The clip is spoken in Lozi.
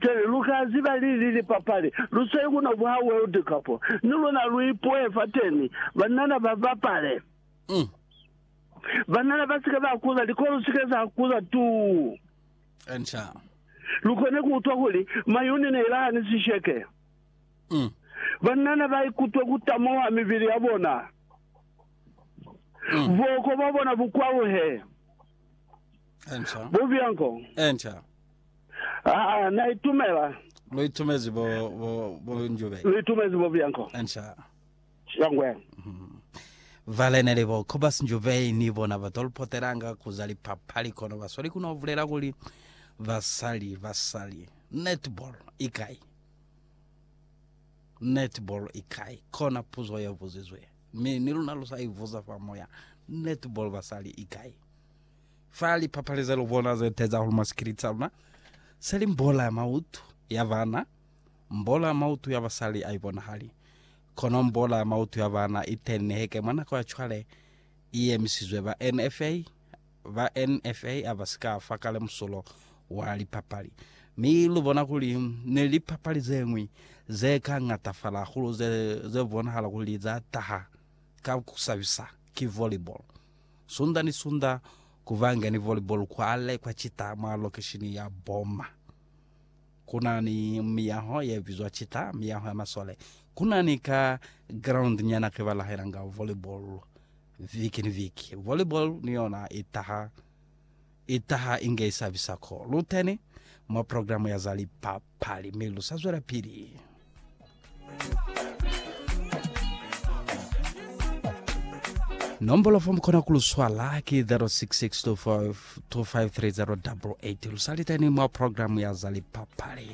Pele lu ka ziba lili lipapali, lu sweli ku no buha World Cup. Ni luna lu ipuhe fateni, banana ba bapale. Banana ba si ke ba kuza, likolo si ke za kuza tuu. Lu kone ku utwa kuli mayuni ne ila hani sisheke. Banana ba ikutwe ku tamuha mibili ya bona. Buoko bwa bona bu kwaluhe. Enca. Bubi anko. Enca. Aa, na itumela. Lu itumezi bo, bo, bo njube. Lu itumezi bubi anko. Enca. Shangwe. Mm. Vale ne li bo Cobus Njube ni bona ba tol potelanga ku za lipapali kono ba sweli ku no vulela kuli basali, basali. Netball i kai? Netball i kai? Kona puzo ye buzizwe. Mi, ni luna lu sa ivuza fa moya. Netball basali i kai? fa lipapali ze lu bona ze teza hulu mwa sikiliti sa luna, seli mbola ya mautu ya bana, mbola ya mautu ya basali a i bonahali. Kono mbola ya mautu ya bana i teni niheke mwa nako ya cwale, i yemisizwe ba NFA. Ba NFA a ba si ka fa kale musulo wa lipapali. Mi lu bona kuli ni lipapali ze ñwi ze ka ñatafala hahulu ze, ze bonahala kuli za taha ka ku sabisa, ki volleyball. Sunda ni Sunda, ku banga ni volleyball kwale kwa Chita mwa lokeshini ya Boma. Ku na ni miyaho ye bizwa Chita, miyaho ya masole. Ku na ni ka ground nyana ke ba lahelanga volleyball viki ni viki. Volleyball ni yona i taha i taha inge i sabisa ko lu teni mwa programu ya za lipapali mi lu sa zwela pili. Nombolo fo mu kona ku lu swala ki 0662525388 lu sa liteni mwa programu ya za lipapali.